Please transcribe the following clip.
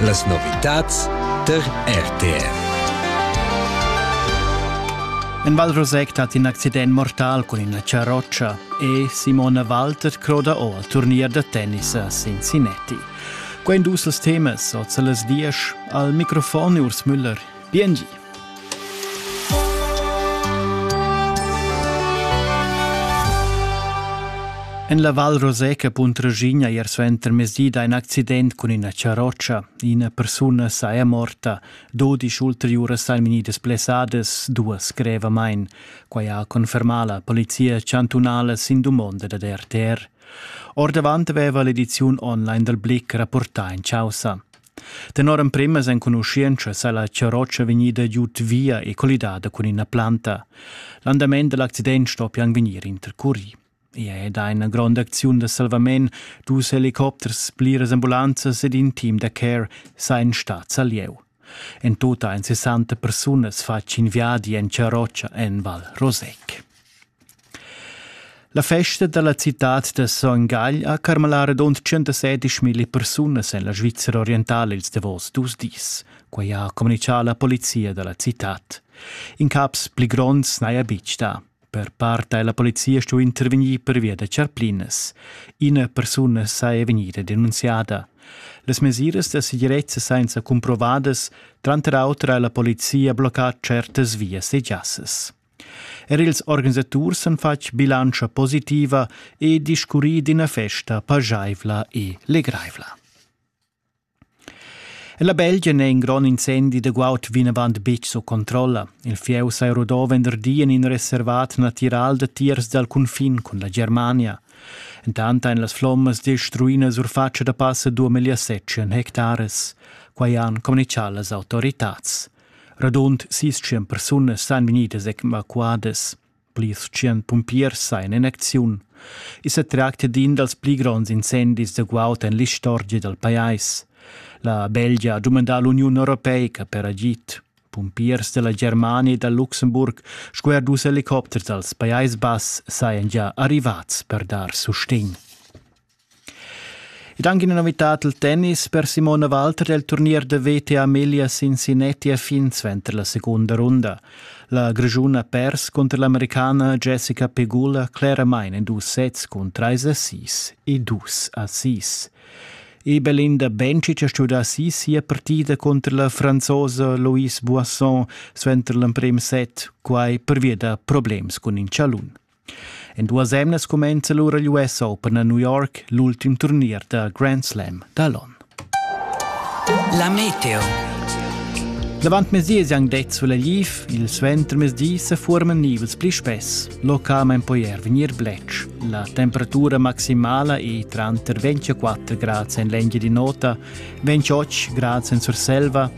Las novitads tar RTR. En Val Roseg dat in accident mortal cun ina charrotscha e Simona Walter croda o al turnier da tennis a Cincinnati. Quei dus els temas oz las diesch al microfon Urs Müller Biengi. En la Val Roseca Puntraschigna ier suenter mezdi da in accident cun ina charrotscha. Ina persuna sa è morta, dodisch ulteriuras ein vegnidas blessadas, duas grevamain. Quai ha confermà la polizia chantunala sin dumonda da RTR. Ordavant aveva l'ediziun online dal Blick rapportà in causa. Tenor emprimas enconuschientschas ha la charrotscha vegnida giud via e collidada cun ina planta. L'andament da l'accident stoppian vegnir intercurì. I è da ina gronda acziun da salvament, dus helicopters, pliras ambulanzas ed in team da care sajan stads a lieu. En tut ein 60 persunas fatg in viadi en charrotscha en Val Rosec. La festa dalla citad da Son Gagl ha carmalà radund 117 mila persunas en la Svizra orientala ils davos dus dis. Quai ha communitgà la polizia da la citad. In caps pli gronds n'haja betg dà. Per part ha la polizia stuì intervegnir pervia da charplinas. Ina persuna saja vegnida denunziada. Las mesiras da segirezza senza cumprovadas, tranter auter ha la polizia bloccà certas vias e giassas. Er ils organisaturs han fatg bilantscha positiva e discurrì d'ina festa pajaivla e legraivla. La Belgia n'è in grond incendi da guaud vinavant betg sco controlla. Il fieu sa rodò venderdi en in reservat natiral da tiers dal cunfin cun la Germania. Intant ein las flommas destruina surfatscha da passa 2007 hectares, quai han communichà las autoritads. Radund sis tschient persunas san vegnidas evacuadas. Plirs tschient pumpiers sajan in acziun. I sa tracta d'in dals pli gronds incendis da guaud en l'istorgia dal pajais. La Belgia ha dumandà l'Uniun Europeica per agid. Pumpiers della Germania e dal Luxemburg sco er dus helicopters dals Pajais Bass sajan già arrivads per dar sustegn. Ed anche una novità al tennis per Simone Walter del turnier de WTA Melia Cincinnati a fin suenter la seconda runda. La Grischun ha pers contro l'americana Jessica Pegula claramente in dus sets con 3 a 6 e 2 a 6. E Belinda Bencic ha studiato sì sia partita contro la franzosa Louise Boisson suenter l'emprim set, quai per via da problems con in chalun. En duas emnas cumenza lura l'US Open a New York l'ultim turnier da Grand Slam da l'on. La meteo. L'avantmezdi siang det sulla Liv, il suentermezdi se forman nivels pli spess, localment poi er venir blec. La temperatura maximala è tranter 24 gradi en l'engia di nota, 28 gradi en Surselva